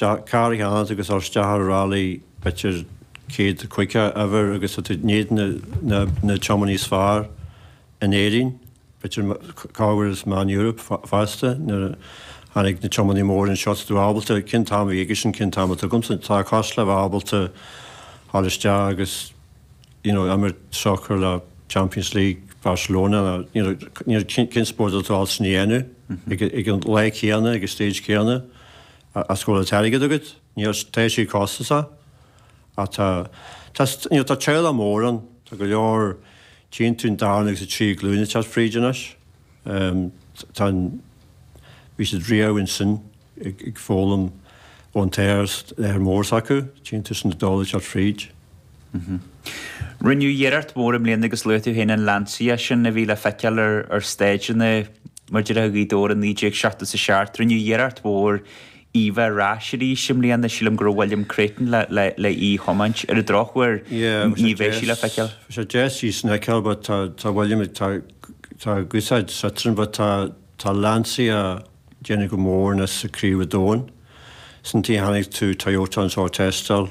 Tá carr agat agus isteach ar rally b'fhéidir céad caoga eibhir agus tá tú in éadan na tiománaí is fearr in Éirinn, b'fhéidir cá bhfuil is meán Europe fosta, nuair a tháinig na tiománaí mór anseo is tú ábalta, cén t-am a bhí aigesean cén t-am atá agamsa, tá sé cosúil le bheith ábalta dhul isteach agus you know imirt sacar le Champions League Barcelona nó you know cén spórt atá tú ábalta sin a dhéanamh ar an lá céanna ar an stage céanna. As go bhfuil an t-airgead agat, níl tá sé costasach ach tá, tá, you know, tá teaghlach mór ann, tá go leor tchíonn tú an darna agus an tríú glúin ag teacht fríd anois, tá an, bhí siad riamh ansin ag foghlaim ón athair, lear mór s'acu, tchíonn tú sin iad uilig ag teacht fríd. Mh. Rinneadh iarracht mhór i mbliana agus luaigh tú féin an Lancia sin a bhí le feiceáil ar stáidseanna mar a déarfá Ghaoth Dobhair i 1970 is a 7. Rinneadh iarracht mhór í bheith ar ais arís i mbliana. Sílim go raibh William Creighton le í thiomáint. Ar an drochuair ní bheidh sí le feiceáil. Bheadh sé deas í sin a fheiceáil but tá tá William tá tá a guthsaid sa trin but tá tá Lancia déanamh go mór anois sa craobh an domhain. San tí tháinig tú Toyota anseo ag teisteáil.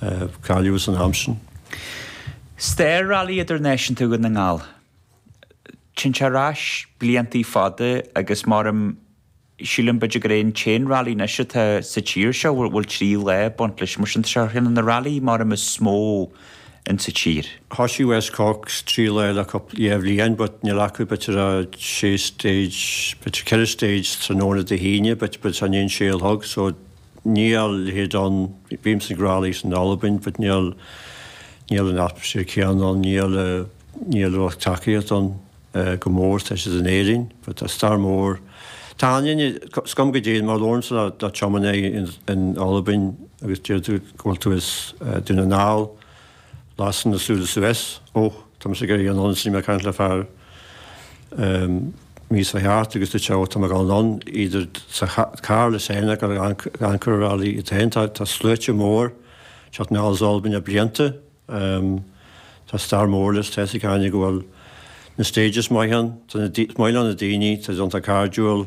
a cailleadh san am sin. Stair Rally Idirnaisiúnta Dhún na nGall. Téann sé ar ais bliantaí fada agus maram sílim b'fhéidir gur é an t-aon rally anois atá sa tír seo a bhfuil trí lá ag baint leis. Mar sin tá sé ar cheann de na rally maram is mó in sa tír. Thosaigh West Cork sa trí lá le cúpla dhá bhliain but níl acu b'fhéidir a sé stage b'fhéidir ceithre stage tráthnóna Dé hAoine but b'fhéidir i ndiaidh an sé a chlog so Níl a leithéid ann, bímse ag rallies in Albain but níl, níl an atmosphere céanna ann, níl, níl lucht tacaíocht ann chomh mór is tá siad in Éirinn but tá stair mór, tá an Fhine, is cuma cá dtéann, má labhrann tú le tiománaí in Albain agus deir tú go bhfuil tú as Dún na nGall, Lasann a súile suas. Ó, tá mise ag iarraidh anonn is bhí mé ag caint le fear míos fá theacht agus dúirt sé, ó, tá mé ag dul anonn, idir sa charr leis féin ag amharc ar an rally é féin. Tá sluaite mór teacht anall as Albain le blianta. Tá stair mór leis, tá a fhios ag achan duine go bhfuil na stages maith ann. Tá na, is maith leo na daoine, tá siad iontach cairdiúil.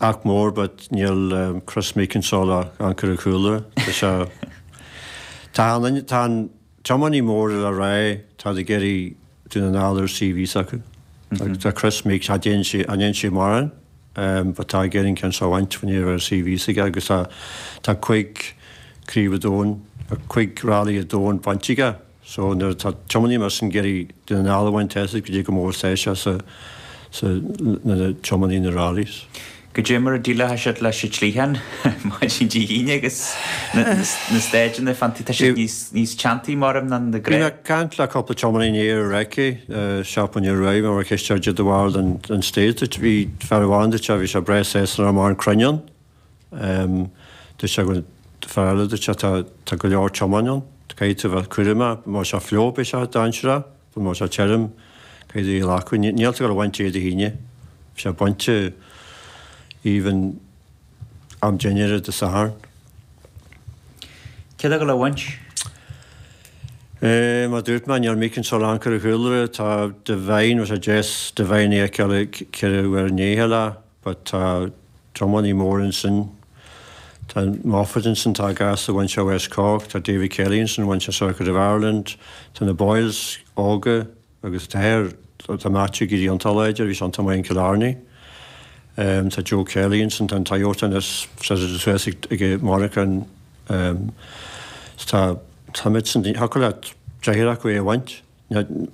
Ach mór, but níl Kris Meeke anseo le amharc ar chúla. Is ea, tá an, tá an, tiománaí mór le rá, tá siad ag iarraidh Dún na nGall ar CV s'acu. Agus tá Kris Meeke, cha dtéann sé, cha ndéanann sé mórán, but tá ag iarraidh an ceann seo a bhaint faoi ndear a raibh CV s'aige agus tá, tá cúig craobh an domhain, cúig rally an domhain bainte aige. So nuair atá tiománaí mar sin ag iarraidh Dún na nGall a bhaint as, is cé chomh mór is atá sé seo sa, sa, na, na tiománaithe na rallies. Go dtí mar a déileálann siad leis an tsliotán maidin Dé hAoine agus na, na, na stáitseanna fáin dtí, tá siad níos, níos teanntaí marm ná na Bhí mé ag caint le cúpla tiománaí in Iar Raice, seachtain ó shin, bhí mé ag ceistiú de bharr don, don stage, bhí fear amháin dúirt sé, bhí sé breá séasúnach mar an cruinn ann. Dúirt sé go, dúirt fear eile, dúirt sé tá, tá go leor tiomáint ann, caithfidh tú a bheith, cúramach, má tá sé fliuch beidh sé dainséarach, bhuel má tá sé tirim, caithfidh a dhíol acú, níl, níl tú gabháil a bhaint é Dé hAoine, ní bheidh sé bainte even am dinnéara Dé Sathairn. Cé tá gabháil a bhaint? Eh, mar dúirt mé níor míc an Solán cur a chúlra, tá Devine, bheadh sé deas Devine a fheiceáil ag ceithre uair an dhéicheall a. but tá tiománaithe móra ansin, tá Moffat ansin, tá Gareth a bhain sé West Cork, tá David Kelly ansin a bhain sé Circuit of Ireland, tá na Boyles óga agus tá a n-athair, tá Matthew ag éirí iontach láidir, bhí sé iontach maith in Killarney. Tá Joe Kelly ansin, tá an Toyota ina seasamh suas ag Monica ann tá, táimidne, thiocfadh leat deich acu é a bhaint.